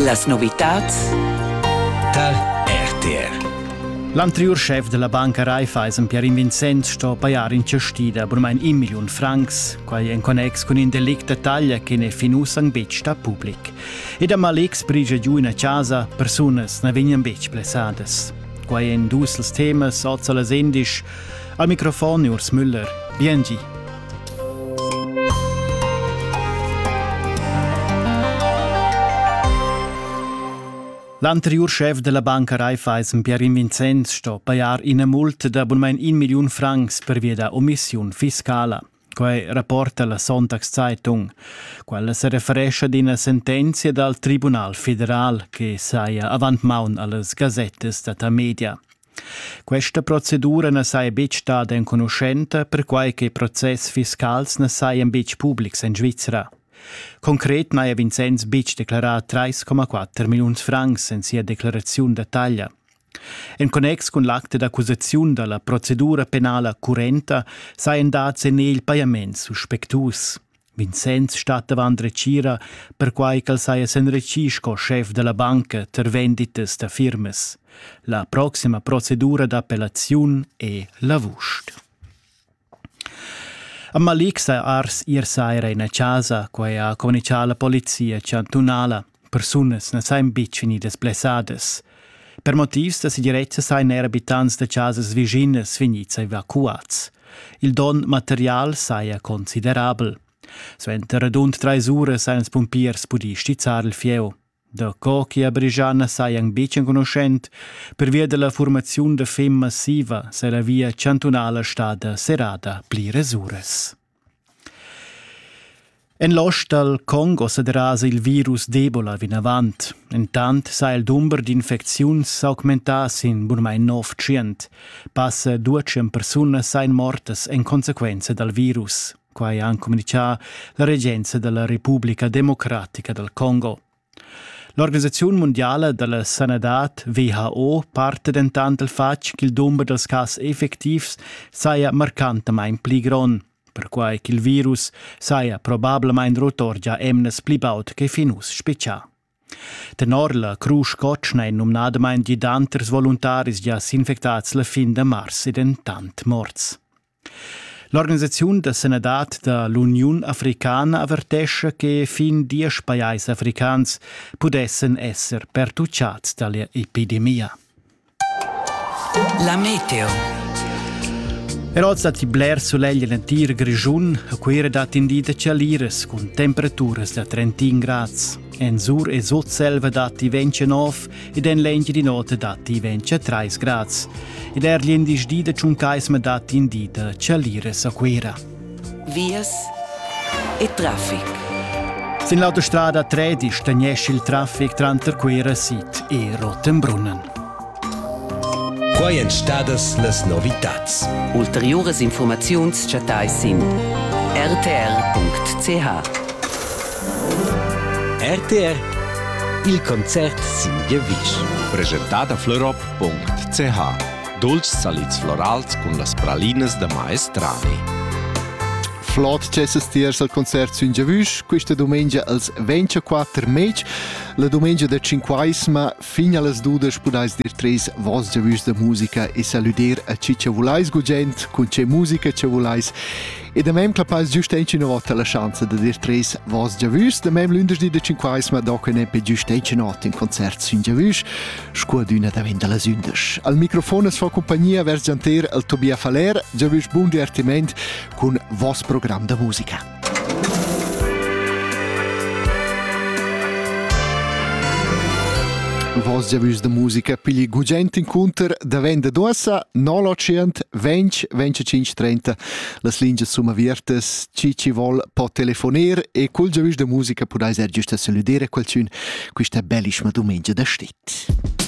Las novitads tar RTR. L'anteriur schef della banca Raiffeisen, Pierin Vincenz, sto pajar in cestida burmain in million francs, quai en connex cun in delict da taglia che n'è fin uss anc betg stà public. Ed a Malix brigia giu ina chasa, persunas na vegnan betg blessadas. Quai èn dus els temas oz a las endisch. Al microfon Urs Müller. Biengi. L'anteriur schef della banca Raiffeisen Pierin Vincenz sto pajar ina multa da abunmain un million francs per via da omissiun fiscala. Quai rapporta la Sonntagszeitung. Quella se referescha ad ina sentenzia dal Tribunal federal che saja avant maun allas gazettas data media. Questa procedura na saja betg stada enconuschenta, perquai che process fiscals na sajan betg publics en Svizra. Concret n'haja Vincenz betg declarà 3,4 milliuns francs en sia declaraziun da taglia. En connex cun l'acte d'accusaziun da la procedura penala currenta sajan dads en egl pajaments suspectus. Vincenz stat davant retgira, perquai ch'el saja s'enretschì sco schef da la banca tar venditas da firmas. La proxima procedura d'appellaziun è l'avust. A Malik sa ars ir saira ina chasa, quai ha communicà la polizia chantunala. persunas na sajan betg vegnidas blessadas. Per motivs da segirezza sajan er abitants da chasas vischinas vegnids evacuads. Il donn material saja considerabel. Suenter radund trais uras han ils pumpiers pudì stizzar il fieu. Daco che a Brigiana sajan betg enconuschent, pervia della formaziun da fem massiva, se la via chantunala stada serrada pli uras. En l'ost dal Congo sa derasa il virus d'Ebola vinavant. Intant sa il dumber d'infecziuns s'augmentà sin bunamain nov tschient. Passa duecent persunas sain mortas en consequenza dal virus. Quai ha communichà la regenza da la Repubblica democratica dal Congo. L'organisaziun mundiala da la sanadad WHO parta dentant dal fatg ch'il dumber dals cas effectivs saja marcantamain pli grond, perquai ch'il virus saja probablamain rotor gia emnas pli baud che fin uss spetgà. Tenor la crusch cotschna è numnadamain gidanters voluntaris gia s'infectads la fin da mars e dentant morts. L'organisaziun da sanadad da l'Uniun africana avertescha che fin diesch pajais africans pudessen esser pertucciads dalla epidemia. La meteo. Er oz datti bler sulegl en l'entir Grischun. A Cuira dat in di da chaliras cun temperaturas da 31 grads. En Sur e Sutselva datti 29 ed en l'Engiadin'Ota datti 23 grads. Ed er l'indisch da Tschuncaisma datti in di da chalires a Cuira. Vias e traffic. Sin l'autostrada 13 tegnesch il traffic tranter Cuira Sid e Rotenbrunnen. Quai èn stadas las novitads. Ulteriuras informaziuns chattais sin rtr.ch. RTR Il concert sin giavisch. Presentada florop.ch Dolci salids florals cun las pralinas da maestrani. Flot cessas tiers al concert sün giavüsch, quista dumengia als 24 mec, la dumengia da Cinquaisma, fin allas dudas pudais dir treis vos giavüsch da musica e salüder a chi cha vulais gugent, cun che musica che vulais E da mem clapais giust ina vota la schanza da dir tres vos giavüs, da mem lündersdi de cinquais ma doc ne pe giust ina nota in concert sün giavüs, scuadüna da vin da las ündas. Al microfon es fa compagnia vers gianter el Tobia Faller, giavüs bun divertiment cun vos program da musica. vos giavüs da musica pigli gugent inconter da venda d'uossa 0 800 20 25 30 las lingias sum aviartas, chi chi vol po telefoner e cul giavüsch da musica pudais er güsta salüder a qualchün quista bellischma dumengia da stit.